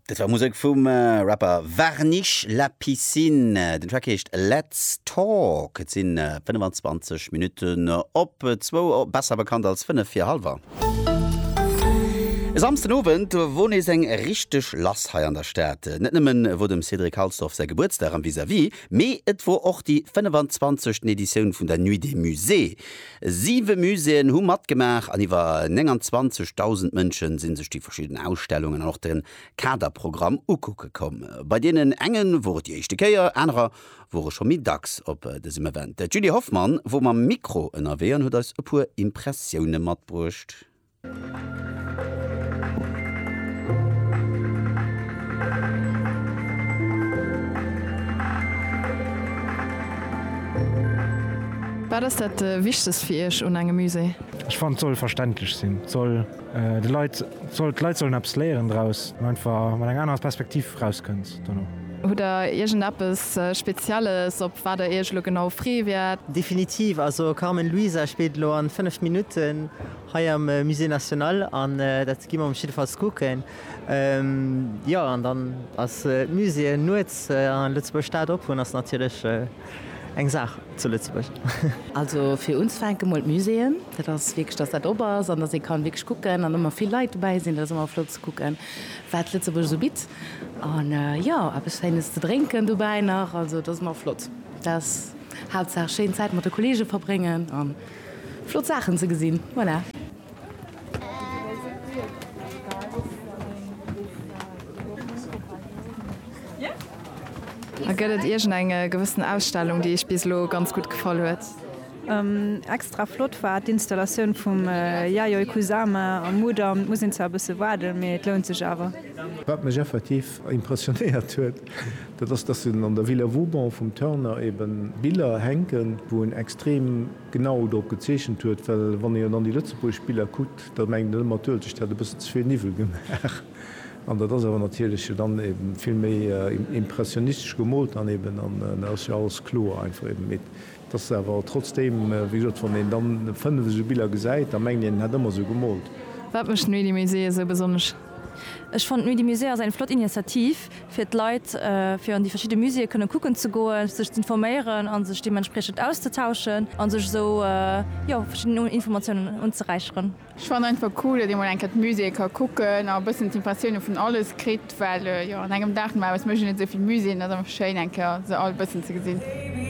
Dat war Musek vum Rapper Varnish La Piscine. Den Track heescht Let's Talk. Et sinn 25 Minutten op zwou, besser bekannt als 5 vir Halwer. E Samsden Owend wor nees eng richteg lass hei an der Stad. Net nëmmen wor dem Cédric Halsdorf säi Gebuertsdag am Vis-à-Vis, mee et wor och déi 25. Editioun vun der Nuit des Musées. Siwe Muséeën hu matgemaach an iwwer 29.000 Mënsche si sech déi verschidden Ausstellungen an och de Kaderprogramm ukucke komm. Bei deenen enge wor et déi éischte Kéier, anerer wore scho méi dacks op dësem Event. D'Julie Hoffmann wor mam Mikro ënnerwee an huet eis e puer Impressioune matbruecht. Wat ass dat Wichtegst fir Iech un engem Musée? Ech fannen, et soll verständlech sinn, et soll de Leit, d'Leit sollen eppes léieren draus an einfach mat enger anerer Perspektiv rauskënns dono. Hutt Der iergendeppes Spezielles, op wat Der Iech elo genau free wäert? Definitiv, also Carmen Luisa spillt elo an 5 Minutten. Hei am Musée National, an dat gi mer mech jiddefalls kucken. Jo, an dann ass d'Muséeën nuets a Lëtzebuerg Stad op hunn ass natierlech eng Saach zu Lëtzebuerg. Also fir unzefänken mol d'Muséeën, dat ass wierklech, dass dat op ass an dass ee kann wierklech kucken an ëmmer vill Leit dobäi sinn, dat ass ëmmer flott ze kucken, wat Lëtzebuerg esou bitt. An jo, eppes Schéines ze drénken dobäi nach, also et ass ëmmer flott, dass haaptsaach schéin Zäit mat de Kollegen verbréngen an. Flott Saachen ze gesinn, voilà. Gëtt et iergend eng gewëssen Ausstellung, déi iech bis elo ganz gutt gefall huet? Extra flott war d'Installatioun vum Yayoi Kusama am Mudam. Muss een zwar e bësse waarden, mee et lount sech awer. Wat mech effektiv impressionéiert huet, Dat ass, dass en an der Villa Vauban vum Turner ebe Biller hänken, wou en extrem genau drop gezeechent huet, well wann een dann déi lëtzebuergesch Biller kuckt, da mengt een ëmmer, d'Uelzecht hätt e bëssen ze vill Niwwel gemaach. An dat ass awer natierlech dann ebe vill méi impressionistesch gemoolt dann eben an da ass jo alles kloer einfach eben. Et ass awer trotzdeem, wéi gesot, wann een dann fënnef esou Biller gesäit, da mengt een, en hätt ëmmer esou gemoolt. Wat mécht d'Nuit du Musée esou besonnesch? Ech fannen d'Nuit du Musée ass eng flott Initiativ fir d'Leit, fir an déi verschidde Muséeë kënne kucken ze goen, sech z'informéieren a sech deementspriechend auszetauschen a sech esou, jo, verschidden Informatiounen unzeräicheren. Ech fannen einfach cool, datt ee mol eng Kéier d'Muséeë ka kucken a e bëssen d'Impressioune vun alles kritt, well, jo, an engem Dag no Aarbecht mécht een net esou vill Muséeën, et ass einfach schéin, eng Kéier se all e bëssen ze gesinn.